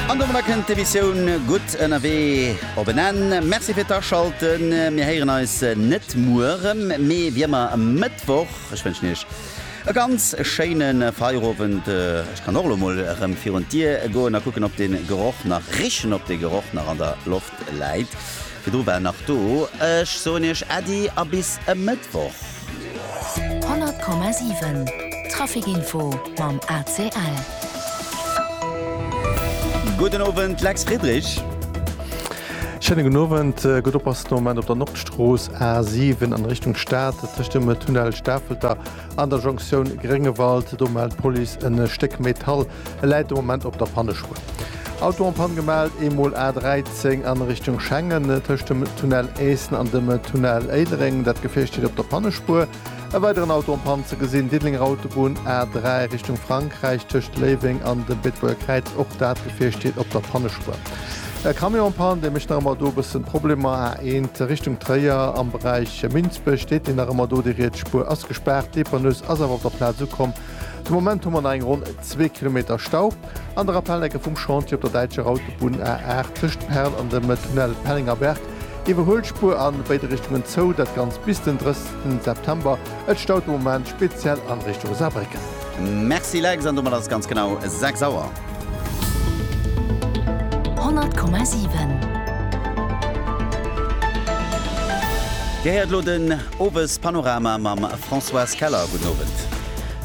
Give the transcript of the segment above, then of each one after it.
An domadder kënnt d'Emissioun Gutt ënnerwee op en Enn. Merci fir d'Aschalten. Mir héieren eis net muer erëm, mee wéi ëmmer e Mëttwoch. Ech wënschen Iech e ganz schéine Feierowend. Ech kann och elo mol erëm virun d'Dier goen a kucken, ob de Geroch nach richen, ob de Geroch nach an der Loft. Läit. Virdru war en nach do. Ech soen iech Äddi a bis e Mëttwoch. 100,7 Traficinfo mam ACL. Gudden Owend, Lex Friedrich. Schéine gudden Owend. Gutt oppassen de Moment op der Nordstrooss A7 an Richtung Stad, tëscht dem Tunnel Stafelter an der Jonktioun Gréngewald. Do mellt d'Police e Stéck Metall. E läit de Moment op der Pannespuer. Auto en Panne gemellt, eemol A 13 an Richtung Schengen, tëscht dem Tunnel Eessen an dem Tunnel Éilereng. Dat Gefier steet op der Pannespuer. E weideren Auto en Panne ze gesinn, Diddelenger Autobunn, A 3 Richtung Frankräich, tëscht Léiweng an dem Beetebuerger Kräiz. Och dat Gefier steet op der Pannespuer. E Camion en Panne, dee mécht nach ëmmer do e bëssen Problemer. A 1 Richtung Tréier, am Beräich Minsbech steet deen nach ëmmer do. Déi riets Spuer ass gespaart. D'Dépanneuse ass awer op der Plaz ukomm. De Moment hu mer nach eng ronn zwee Kilometer Stau an der Rappellecke vum Chantier op der däitscher Autobunn A8 tëscht Perl an dem Tunnel Pellengerberg. Iwwerhuelspuer an béide Richtungen zou, dat Ganzt bis den 30 September. Et staut de Moment speziell an Richtung Saarbrécken. Merci Lex, an domat ass et ganz genau 6 Auer. 100,7. Dir héiert elo den Owespanorama mam Françoise Keller. Gudden Owend.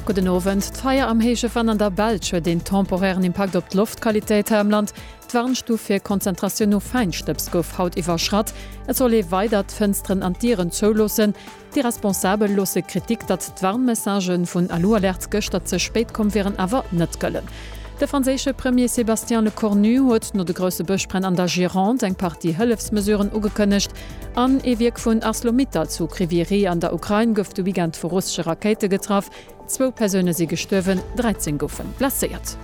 Gudden Owend. D'Feier am héije Venn an der Belsch huet een temporären Impakt op d'Loftqualitéit hei am Land. D'Warnstuf fir Konzentratioun no Fäinstëbs gouf haut iwwerschratt. Et soll ee weider d'Fënsteren an d'Dieren zouloossen. Déi Responsabel loosse Kritik, datt d'Warnmessagë vun Alu-Alerts gëschter ze spéit komm wieren, awer net gëllen. De franséische Premier Sébastien Lecornu huet no de grousse Bëschbränn an der Gironde eng Partie Hëllefsmesuren ugekënnegt. An ee Wierk vun Arcelor-Mittal zu Kryvyi Rih an der Ukrain gouf de Weekend vu russesche Rakéite getraff. Zwou Persoune si gestuerwen, 13 goufe blesséiert.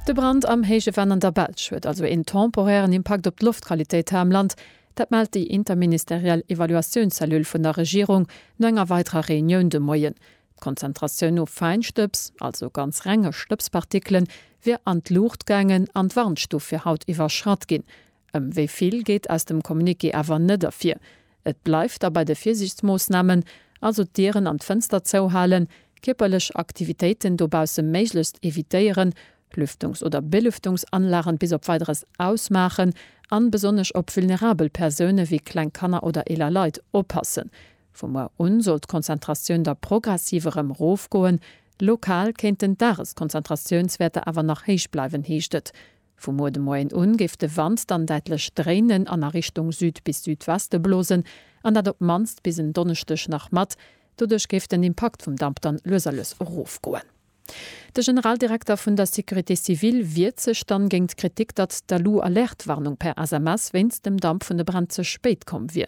De Brand am héije Venn an der Belsch huet also een temporären Impakt op d'Loftqualitéit hei am Land. Dat mellt déi interministeriell Evaluatiounscellule vun der Regierung no enger weiderer Reunioun de Moien. D'Konzentratioun no Fäinstëbs, also ganz renge Stëbspartikelen, wier an d'Luucht gaangen an d'Warnstuf fir haut iwwerschratt ginn. Ëm wéi vill geet aus dem Communiqué awer net ervir. Et bleift da bei de Virsiichtsmoossnamen, also d'Dieren an d'Fënster zouhalen, kierperlech Aktivitéiten dobausse méiglechst evitéieren, Lüftungs oder Belüftungsanlagen bis op Weideres ausmaachen an besonnesch op vulnerabel Persounen wéi kleng Kanner oder eeler Leit oppassen. Vu muer un soll d'Konzentratioun da progressiv erëm rofgoen. Lokal kéinten d'Dageskonzentratiounswäerter awer nach héich bleiwen, heescht et. Vu muer de Moien un géif de Wand dann däitlech dréinen an a Richtung Süd bis Südweste blosen an dat op d'mannst bis en Donneschdeg nach mat. Doduerch géif den Impakt vum Damp dann lues a lues erofgoen. De Generaldirekter vun der Sécurité civile wiert sech dann géint d'Kritik, datt d'Alu-Alerte-Warnung per SMS wéinst dem Damp vun de Bränn ze spéit komm wier.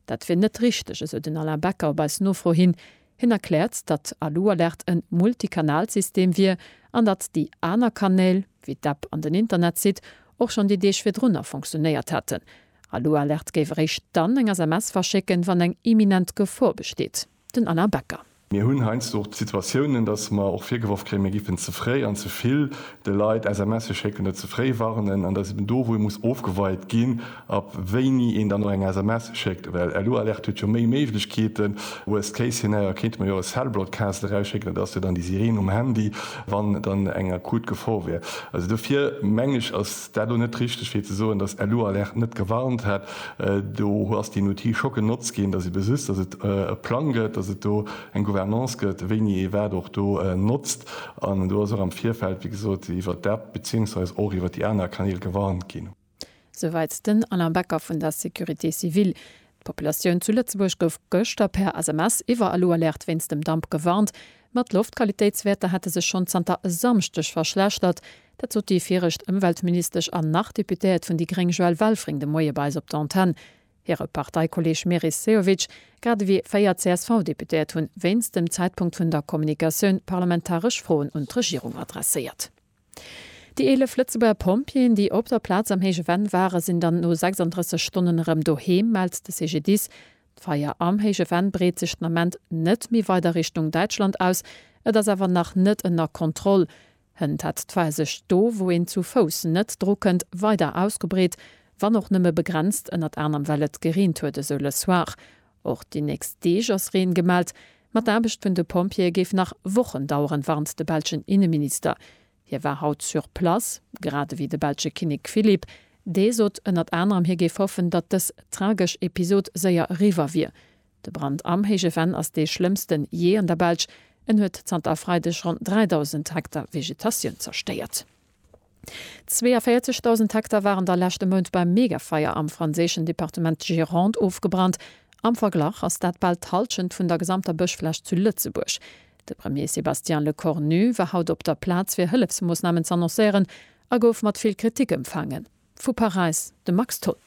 Dat wier net richteg, esou den Alain Becker op eis Nofro hin. Hien erkläert, datt d'Alu-Alerte en Multikanalsystem wier an datt déi aner Kanäl, wéi d'App an den Internetsite, och schonn déi Deeg virdrunner fonctionéiert hätten. Alu-Alerte géif eréischt dann eng SMS verschécken, wann eng imminent Gefor besteet. den Alain Becker. Mir hunn heiansdo och d'Situatiounen, datt mer och virgeworf kréien, mir géifen ze fréi an ze vill de Leit SMSe schécken oder ze fréi warnen. An dat ass eben do, wou ee muss ofgeweit ginn, ab wéini een dann och eng SMS schéckt. Well LU-Alerte huet jo méi Méiglechkeeten. Worst case scenario kéinte mer jo och e Cell Broadcast erausschécken, dat ass jo dann déi Sireen um Handy, wann dann eng akut Gefor wär. Also dofir mengen ech, ass. War do net richteg fir ze soen dass Elu Alert net gewarnt hätt? Do hu ass deen Outil scho genotzt ginn, dass ee besisst dass et e Plang gëtt, dass et do eng Gouvernance gëtt, wéini ee wat och do notzt. An do ass och am Virfeld, wéi gesot, iwwert d'App beziéungsweis och iwwert déi aner Kanäl gewarnt ginn. Souwäit den Alain Becker vun der Sécurité civile. D'Populatioun zu Lëtzebuerg gouf gëschter per SMS iwwer Elu Alert wéinst dem Damp gewarnt. Ma d'Loftqualitéitswäerter hätte sech schonn zanter e Samschdeg verschlechtert. Dat sot déi viregt Ëmweltministesch an nach Deputéiert vun déi gréng Joëlle Welfring de Moie bei eis op der Antenn. Hire Parteikolleeg Meris Sehovic, grad ewéi véier CSV-Deputéiert hunn wéinst dem Zäitpunkt vun der Kommunikatioun parlamentaresch Froen un d'Regierung adresséiert. Déi 11 Lëtzebuerger Pompjeeën, déi op der Plaz am Héije Venn waren, sinn dann no 36 Stonnen erëm doheem, mellt de CGDIS. D'Feier am Héije Venn breet sech den Ament net méi weider Richtung Däitschland aus. Et ass awer nach net ënner Kontroll. Hënt hat d'Fae sech do, wou een zu Fouss net dru kënnt, weider ausgebreet, wann och nëmme begrenzt, ënnert anerm well et gereent huet, esou Le Soir. Och déi nächst Deeg ass Reen gemellt, ma d'Aarbecht vun de Pompjeeë géif nach Wochen daueren, warnt de belschen Inneminister. Hie war haut sur place, grad ewéi de belsche Kinnek Philippe. Dee sot ënnert anerem, hie géif hoffen, datt dës tragesch Episod séier eriwwer wier. De Brand am Héije Venn ass dee schlëmmsten jee an der Belsch. En huet zanter e Freideg ronn 3.000 Hektar Vegetatioun zerstéiert. 42.000 Hektar waren da leschte Mount beim Megafeier am franséischen Departement Gironde ofgebrannt. Am Verglach ass dat bal d'Hallschent vun der gesamter Bëschfläch zu Lëtzebuerg. De Premier Sébastien Lecornu war haut op der Plaz fir Hëllefsmoossnamen z'annoncéieren a gouf mat vill Kritik empfaangen. Vu Paräis de Max Tholl.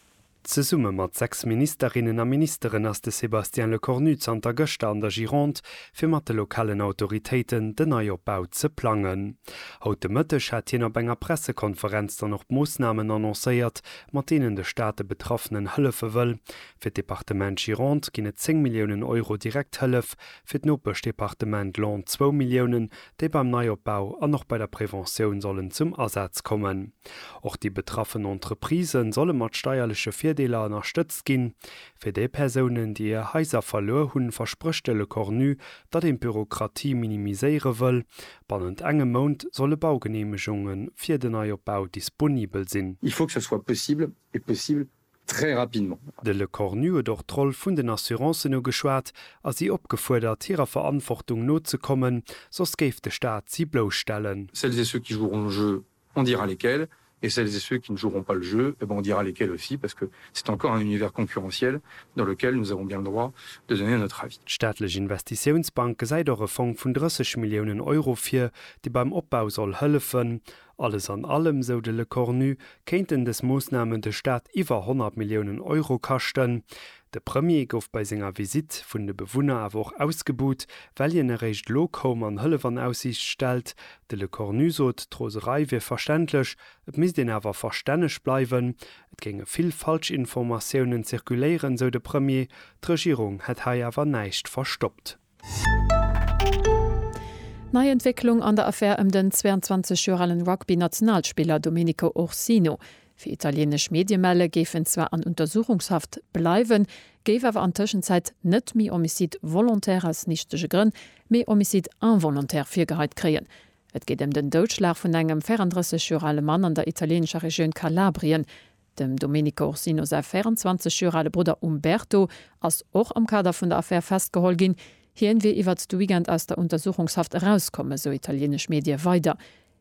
Zesumme mat sechs Ministerinnen a Ministeren ass de Sébastien Lecornu zanter gëschter an der Gironde, fir mat de lokalen Autoritéiten den Neiopbau ze plangen. Haut de Mëtteg hat hien op enger Pressekonferenz dann och d'Moossnamen annoncéiert, mat deenen de Staat de Betraffenen hëllefe wëll. Fir d'Departement Gironde ginn et 10 Milliounen Euro Direkthëllef, fir d'Nopeschdepartement Laon zwou Milliounen déi beim Neiopbau an och bei der Preventioun sollen zum Asaz kommen. Och déi betraffen Entreprisë solle mat steierleche Virdeeler ënnerstëtzt ginn. Fir déi Persounen, déi hir Haiser verluer hunn, versprécht de Lecornu, datt een d'Bürokratie minimiséiere wëll. Bannent engem Mount solle Baugeneemegunge fir den Neiopbau disponibel sinn. Il faut que ce soit possible et possible très rapidement. De Lecornu huet och d'Roll vun den Assurancen ugeschwat a si opgefuerdert, hirer Verantwortung nozekommen, soss géif de Staat si blousstellen. Celles et ceux qui joueront le jeu, on dira lesquels, et celles et ceux qui ne joueront pas le jeu, eh bien, on dira lesquels aussi, parce que c'est encore un univers concurrentiel dans lequel nous avons bien le droit de donner notre avis. D'staatlech Investitiounsbank gesäit och e Fong vun 30 Milliounen Euro vir, dee beim Opbau soll hëllefen. Alles an allem, sou de Lecornu, kéinten dës Moossnamen de Staat iwwer 100 Milliounen Euro kaschten. De Premier gouf bei senger Visitt vun de Bewunner awer och ausgebuht, well hien eréischt elo koum an Hëllef an Aussiicht stellt. De Lecornu sot, d'Roserei wier verständlech, et misst een awer verstänneg bleiwen. Et géinge vill Falschinformatiounen zirkuléieren, sou de Premier, d'Regierung hätt hei awer näischt verstoppt. Nei Entwécklung an der Affär ëm den 22 Joer alen Rugby-Nationalspiller Domenico Ursino. Wéi italieenesch Medie melle géif en zwar an Untersuchungshaft bleiwen, géif awer an Tëschenzäit net méi Homicide volontaire aus nichtege Grënn, mee Homicide involontaire virgeheit kréien. Et geet ëm den Doudschlag vun engem 34 Joer ale Mann an der italieenescher Regioun Kalabrien. Dem Domenico Orsino säi 24 Joer ale Brudder Umberto ass och am Kader vun der Affär festgeholl ginn. Hien wier iwwert de Weekend aus der Untersuchungshaft erauskomm, esou italienesch Medie weider.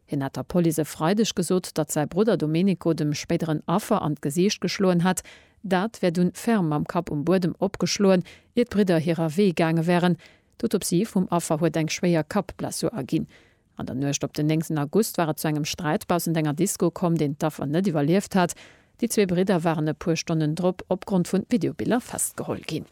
Hien hat der Police e Freideg gesot, datt säi Brudder Domenico dem spéideren Affer an d'Gesiicht geschloen hätt. Dat wär dunn ferm mam Kapp um Buedem opgeschloen, ier d'Bridder hirer Wee gaange wären. D'Autopsie vum Affer huet eng schwéier Kappblessur erginn. An der Nuecht op den 9 August war et zu engem Sträit baussent enger Disco komm, deen d'Affer net iwwerlieft hat. Déi zwee Bridder waren e puer Stonnen drop opgrond vun Videobiller festgeholl ginn.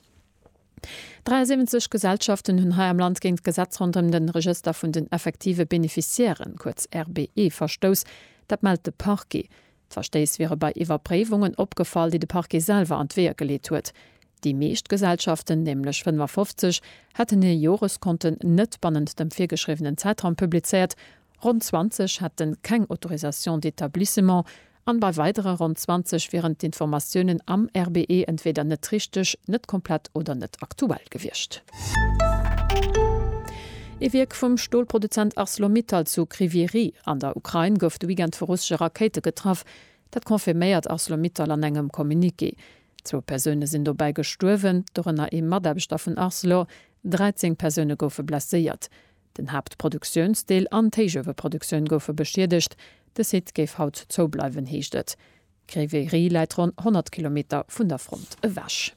73 Gesellschaften hunn hei am Land géint d'Gesetz ronderëm den Regëster vun den effektive Beneficiairen, kuerz RBE, verstouss. Dat mellt de Parquet. D'Verstéiss wiere bei Iwwerpréiwungen opgefall, déi de Parquet selwer an d'Weeër geleet huet. Déi meescht Gesellschaften, nämlech 55, hätten hir Joreskonten net bannent dem virgeschriwwenen Zäitraum publizéiert, ronn 20 hätte keng Autorisation d'établissement an bei weidere ronn 20 wieren d'Informatiounen am RBE entweeder net richteg, net komplett oder net aktuell gewiescht. Ee Wierk vum Stolproduzent Arcelor-Mittal zu Kryvyi Rih an der Ukrain gouf de Weekend vu russesche Rakéite getraff. Dat confirméiert Arcelor-Mittal an engem Communiqué. Zwou Persoune sinn dobäi gestuerwen, dorënner ee Mataarbechter vun Arcelor. 13 Persoune goufe blesséiert. Den Haaptproduktiounsdeel an d'Héichueweproduktioun goufe beschiedegt. De Site géif haut zoubleiwen, heescht et. Kryvyi Rih läit ronn 100 Kilometer vun der Front ewech.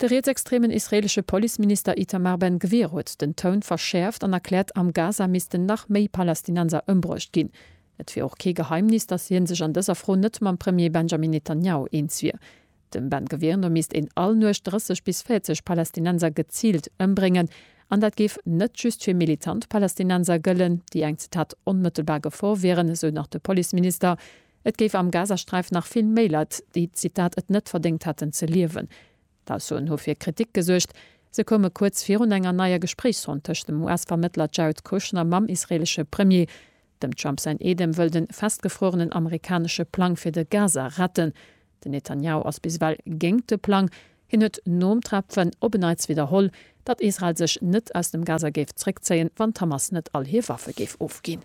De rietsextremen israeelesche Policeminister Itamar Ben Gvir huet den Toun verschäerft an erkläert, am Gaza missten nach méi Palästinenser ëmbruecht ginn. Et wier och kee Geheimnis, datt hien sech an dëser Fro net mam Premier Benjamin Netanjahu eens wier. Dem Ben Gvir no misst een all Nuecht 30 bis 40 Palästinenser geziilt ëmbréngen. An dat géif net just fir militant Palästinenser gëllen, déi eng, Zitat, onmëttelbar Gefor wieren, esou nach de Policeminister. Et géif am Gazasträif nach vill méi Leit, déi, Zitat, et net verdéngt hätten ze liewen. D'Aussoen hu fir Kritik gesuergt. Se koume kuerz virun enger neier Gespréichsronn tëscht dem US-Vermëttler Jared Kushner mam israeelesche Premier. Dem Trump säin Eedem wëll de festgefruerenen amerikanesche Plang fir de Gaza retten. Den Netanjahu ass bis ewell géingt de Plang. Hien huet nom Trepfen op en Neits widderholl, datt Israel sech net aus dem Gaza géif zréckzéien, wann d'Hamas net all hir Waffe géif ofginn.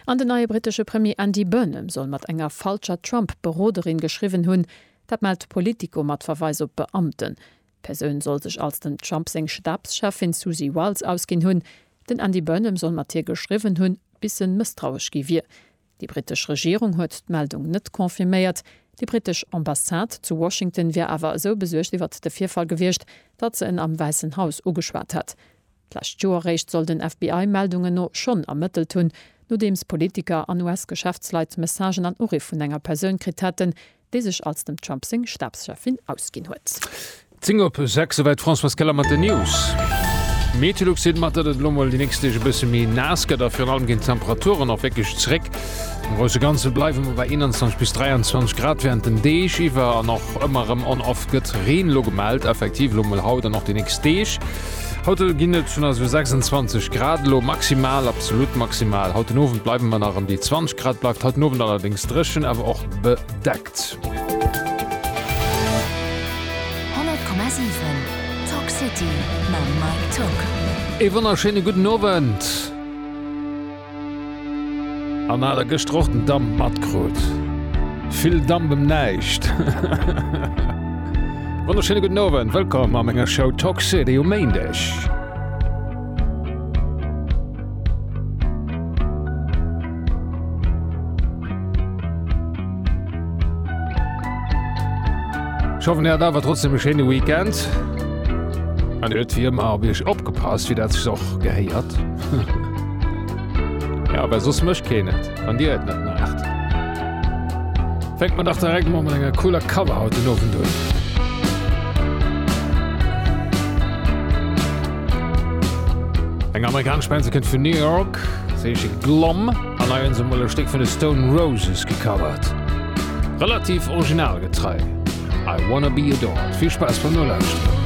An den neie brittesche Premier Andy Burnham soll mat enger falscher Trump-Beroderin geschriwwen hunn. Dat mellt Politico mat Verweis op Beamten. D'Persoun soll sech als dem Trump seng Stabscheffin Susie Wiles ausginn hunn. Den Andy Burnham soll mat hir geschriwwen hunn, bis en mësstrauesch gi wier. Déi brittesch Regierung huet d'Meldung net confirméiert. Déi brittesch Ambassade zu Washington wier awer esou besuergt iwwert de Virfall gewiescht, datt se en am Wäissen Haus ugeschwat hätt. D'lescht Joer réischt soll den FBI Meldungen no schonn ermëttelt hunn, nodeems Politiker an US-Geschäftsleit Messagen an Uriff vun enger Persoun kritt haten, déi sech als dem Trump seng Stabscheffin ausginn huet. 10 op 6, Soweit d'Françoise Keller mat den News. Meteolux seet mer, datt et elo mol déi nächst Deeg e bësse méi naass gëtt a virun allem ginn d'Temperaturen och wierklech zeréck. Am grousse Ganze bleiwe mer bei 21 bis 23 Grad wärend den Deeg iwwer an och ëmmer erëm on-off gëtt Reen elo gemellt. Effektiv elo mol haut an och déi nächst Deeg. Haut ginn et schonn esou 26 Grad elo, maximal, absolut maximal. Haut den Owend bleiwe mer nach ëm déi 20 Grad, bleift haut den Owend allerdéngs dréchen, awer och bedeckt. Ee wonnerschéine gudden Owend. An hat der gëschter och den Damp matkrut? Vill Damp em näischt. Wonnerschéine gudden Owend, wëllkomm a menger Show Talk City um Méindeg. Ech hoffen, dir hat awer trotzdem e schéine Weekend. An dir huet wie ëmmer op Iech opgepasst, wéi dat sech och gehéiert. Ja, aber sos mëcht keen et, wann dir et net maacht. Fänkt man dach direkt mol mat enger cooler Cover haut den Owend un. Eng amerikanesch Band, se kënnt vun New York, se heesche Glom an eien se mol e Stéck vun de Stone Roses gecovert. Relativ originalgetrei. I wanna be adored. Vill Spaass beim Nolauschteren.